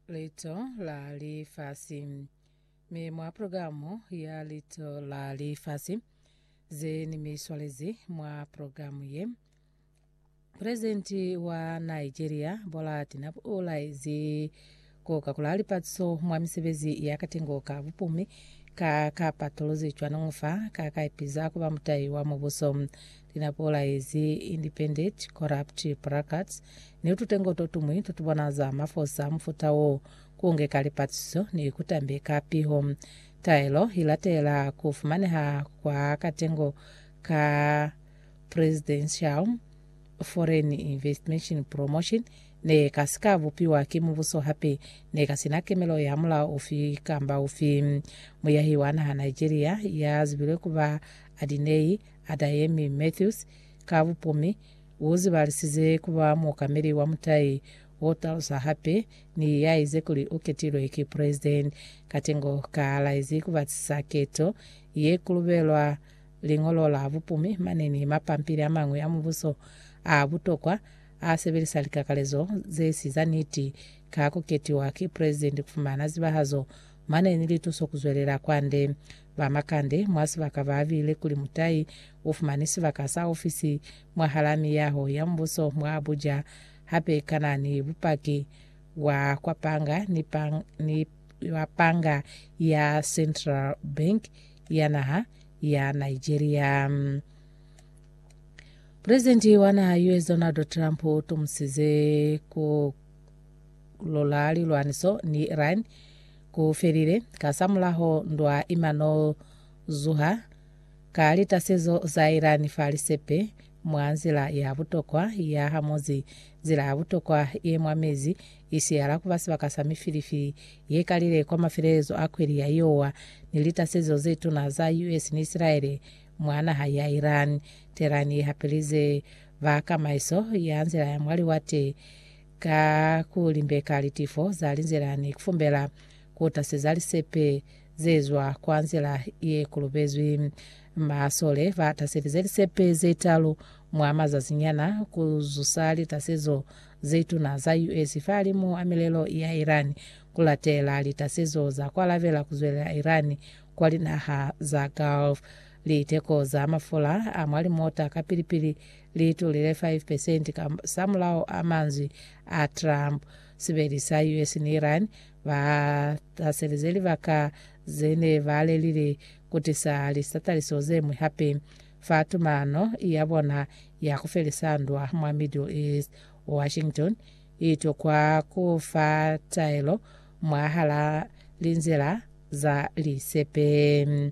Lito la Lifasi. Mi mwa programu ya Lito la Lifasi ze ni mi swalezi mwa programu ye, Presidenti wa Nigeria Bola Tinubu u laezi ku kakula lipatiso mwa misebezi ya katengo ka bupumi ka kapatuluzi cwanoñu fa ka ka ipiza ku ba mutahi wa mubuso. Linapola yezi independent, corrupt, brackets, ni tutengo totumwi totubonaza mafosa amufuta wo, kungeka lipatiso ni kutambeka piho. Taelo ilatela kufumaneha kwa katengo ka Presidential Foreign Investment Promotion nekasika bupiwa ki mubuso hape nekasina kemelo ya mulao ufi kamba ufi. Muyahi wa naha Nigeria yazibilwe kuba Adinei Adayemi Mathews, ka bupumi, u zibalisize ku ba muokameli wa mutai o talusa hape ni ya ize kuli u ketilwe ki Presidenti. Katengo ka laezi ku batisisa keto ye ku lubelwa liñolo la bupumi mane ni mapampili a mañwi a mubuso a butokwa a sebelisa likakalezo ze si za niti ka ku ketiwa ki Presidenti ku fumana zibahazo Mane ni lituso kuzwelela kwande. Ba Makande mwa sibaka ba abile kuli mutai u fumani sibaka sa ofisi mwahalaa miyaho ya mbuso mwa Abuja, hape kana ni bupaki bwa kwa panga ni ni wa panga ya Central Bank ya naha ya Nigeria. Presidenti wa naha US Donald Trump u tumusize ku Lwa lilwaniso ni Iran ku felile, kasamulaho ndwa ima no zuha ka litasezo za Iran fa lisepe mwa nzila ya butokwa ya hamuzi, nzila ya butokwa ye mwa mezi i siyala ku ba sibaka sa mifilifi ye kalile kwa mafelelezo a kweli ya Iowa, ni litasezo ze tuna za US ni Isilaele mwa naha ya Iran. Tehran i hapelize ba kamaiso ya nzila ya mwa liwate Ka ku limbeka litifo za linzila ni ku fumbela ku taseza lisepe ze zwa kwa nzila ye kolobezwi, masole ba taselize lisepe ze talu mwa mazazi nyana ku zusa litasezo ze tuna za US fahalimu a milelo ya Iran, ku latela litasezo za ku alabela ku zwelela Iran kwa linaha za Gulf. Liteko za mafula a mwa limota kapili-pili li tulile 5 percent ka samulaho a manzwi a Trump. Sibeli sa US ni Iran ba haselize libaka ze ne ba lelile ku tisa litataliso ze ñwi hape fa tumano ya bona ya ku felisa ndwa mwa Middle East. Washington i tokwa ku fa taelo mwahal'a linzila za lisepe.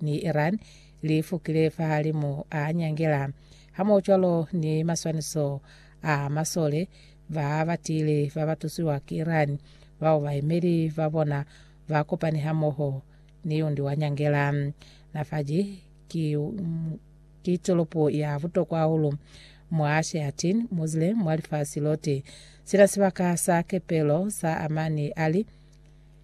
ni Iran li fukile fahalimu a nyangela, hamohocwalo ni maswaniso a masole ba ba tiile ba ba tusiwa ki Iran bao baemeli ba bona ba kopani hamoho ni undi wa nyangela. Nafaji ki, ki tolopo ya butokwa hahulu mwa Sheatin Muslim mwa lifasi lote. Sina sibaka sa kepelo sa Amani Ali,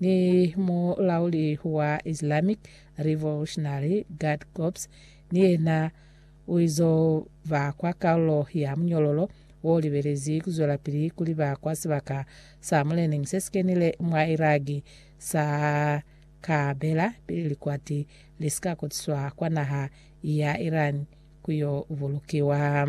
ni mulauli wa Islamic Revolutionary Guard Corps ni yena uizo ba kwa kalulo ya munyololo wo libelezi kuzwelapili kuliba kwa sibaka sa mulening sesikenile mwa Iraki sa Karbela pili likwati lisika kotiswa kwa naha ya Iran kuyo bulukiwa.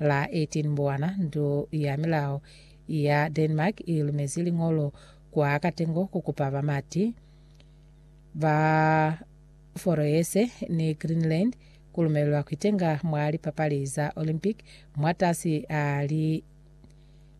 la 18 Mbowana, ndu ya milao ya Denmark i lumezi liñolo kwa katengo ku kupa bamati ba Foroese ni Greenland ku lumelelwa ku itenga mwa lipapali za Olympic mwatasi a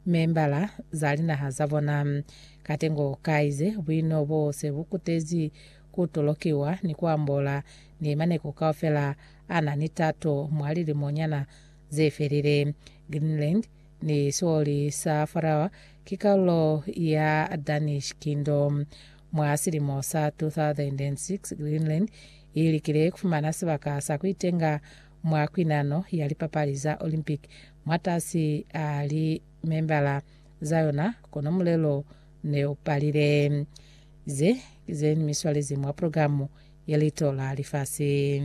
limembala za linaha za bona. Katengo ka ize buino bo se bu kutezi ku tolokiwa ni ku ambola ni maneko kaufela a na ni tato mwa lilimonyana ze felile. Greenland ni sioli sa Faroe ki kalulo ya Danish Kingdom. Mwa silimo sa 2006, Greenland i likile ku fumana sibaka sa ku itenga mwa kwinano ya lipapali za Olympic mwatasi a limembala za yona, kono mulelo ne u palile. Ze ki ze ni mi swalezi mwa programu ya Lito la Lifasi.